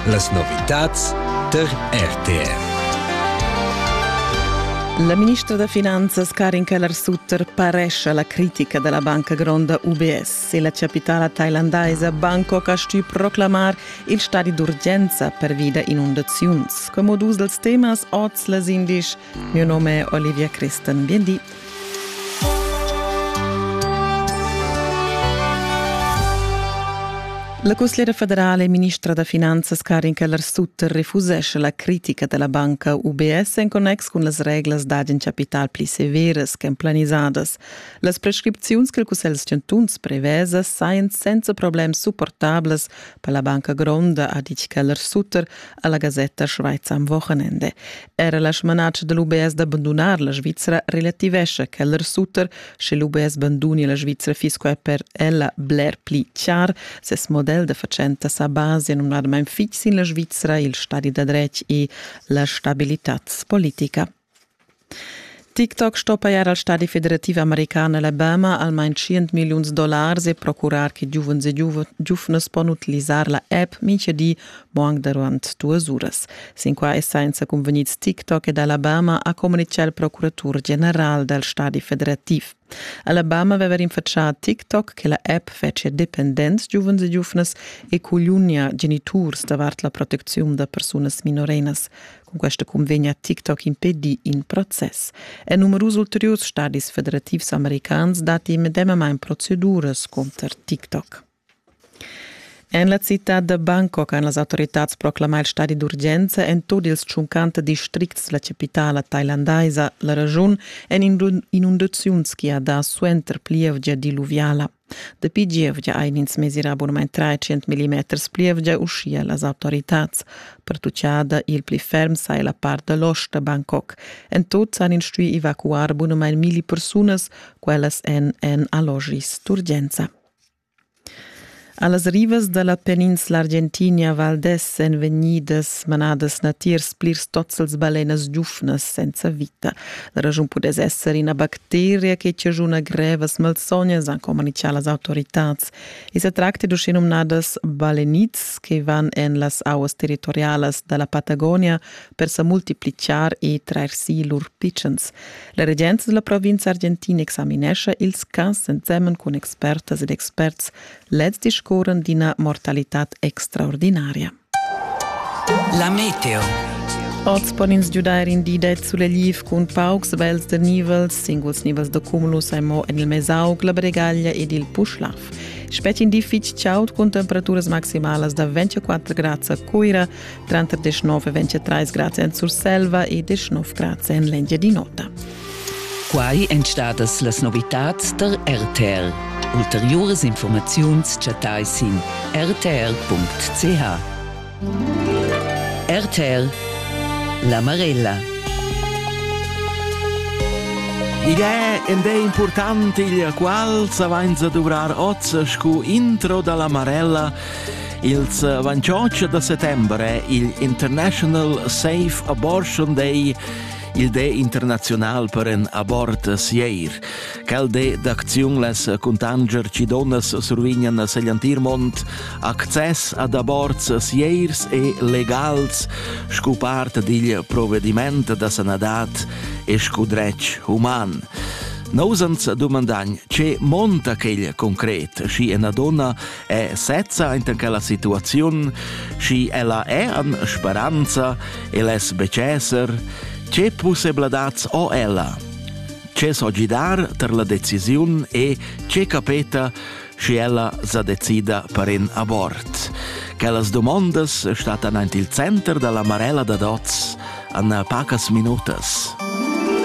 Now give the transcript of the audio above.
Las novitads tar RTR. La ministra da finanzas Karin Keller-Sutter parescia la critica della banca gronda UBS e la capitala thailandaisa Bangkok ha stuì proclamar il stadi d'urgenza pervi da inundaziuns. Come dus dels temas oz les indisch. Mio nome è Olivia Christen. Bien di. La cusgliera federala e ministra da finanzas Karin Keller-Sutter refusesce la critica della banca UBS en connex cun las reglas d'agen capital pli severas ch'en planisadas. Las prescripziuns che il Cussegl da chantuns prevesa sajan senza problem supportablas per la banca gronda, ha ditg Keller-Sutter, alla gasetta Schweizer am Wochenende. Era la smanatsch de l'UBS d'abbandunar la Svizzera relativesce quel Sutter, sche l'UBS banduni la Svizzera fisco è per ella bler pli chiar, ses model de facenta sa base numnadamain fix in la Svizzera, il stadi da dretg e la stabilitaz politica. TikTok sto pajar al stadi federativ american Alabama almain tschient milliuns dollars e procurar che giuvens e giuvnas pon utilisar la app mintga di mo anc durant duas uras. Sin quai è senza cunvegnids TikTok ed Alabama ha communitgà il procuratur general dal stadi federativ. Alabama veva rinfatschà a TikTok che la app fetschia dependents giuvens e giuvnas e cugliunia geniturs davart la protecziun da persunas minorenas. Cun questa cunvegna ha TikTok impedì in process. En numerus ulteriurs stadis federativs americans datti medemamain proceduras cunter TikTok. En la citad da Bangkok han las autoritads proclamà il stadi d'urgenza en tut ils tschuncanta districts la chapitala thailandaisa. La raschun en inundaziuns che ha dà suenter plievgia diluviala. Dapi gievgia ein ins mesirà abunament 300 mm plievgia uschia las autoritads. Pertuccada il pli ferm sai la part dall'ost da Bangkok. En tut han ins stuì evacuar bunamain milli persunas, quellas en en allogis d'urgenza. A las rivas da la peninsla Argentina Val d'Es èn vegnidas manadas natiers plirs tozzels balenas giuvnas senza vita. La raschun pudess esser ina bacteria che chaschuna grevas malsognas, han communitgà las autoritads. I sa tracta d'uschenumnadas balenids che van en las auas territorialas da la Patagonia, per sa multiplichar e trair si lur pitschens. La regenza della provincia argentina examinescha ils cas ensemen con expertas ed experts. Lez discorren d'ina mortalità extraordinaria. La meteo. Oz pon ins giudair in di ded sulegl cun paucs vels de nivels, singuls nivels de cumulus ai mo en il mesaug, la bregaglia ed il puschlaf. Specie in di fitg chaud con temperaturas maximalas da 24 grads a Cuira, Tranter 19 e 23 grads en Surselva e 19 grads en l'Engiadin'Ota. Quai èn stadas las novitads der RTL. Ulteriuras informaziuns chattai sin rtr.ch. RTL La Marella. Igl è ed è important il qual sa vainsa duvrar oz scu intro da la Marella Ils 28 da settembre il International Safe Abortion Day il de international per en abort sieir. Cal de d'acziun les contanger ci donas survignan segliantir mont access ad aborts sieirs e legals scu part digl provvediment da sanadat e scu dretg human. Nosans dumandagn, ce monta quegl concret, schi ena donna è sezza inter quella situaziun, schi ella è an speranza e les becesser, tge pussebladats ho ella? Ce so gidar ter la decisiun e ce capeta schi ella sa decida per in abort. Quellas domondas statan aint il center dalla Marella da Dots an pacas minutas.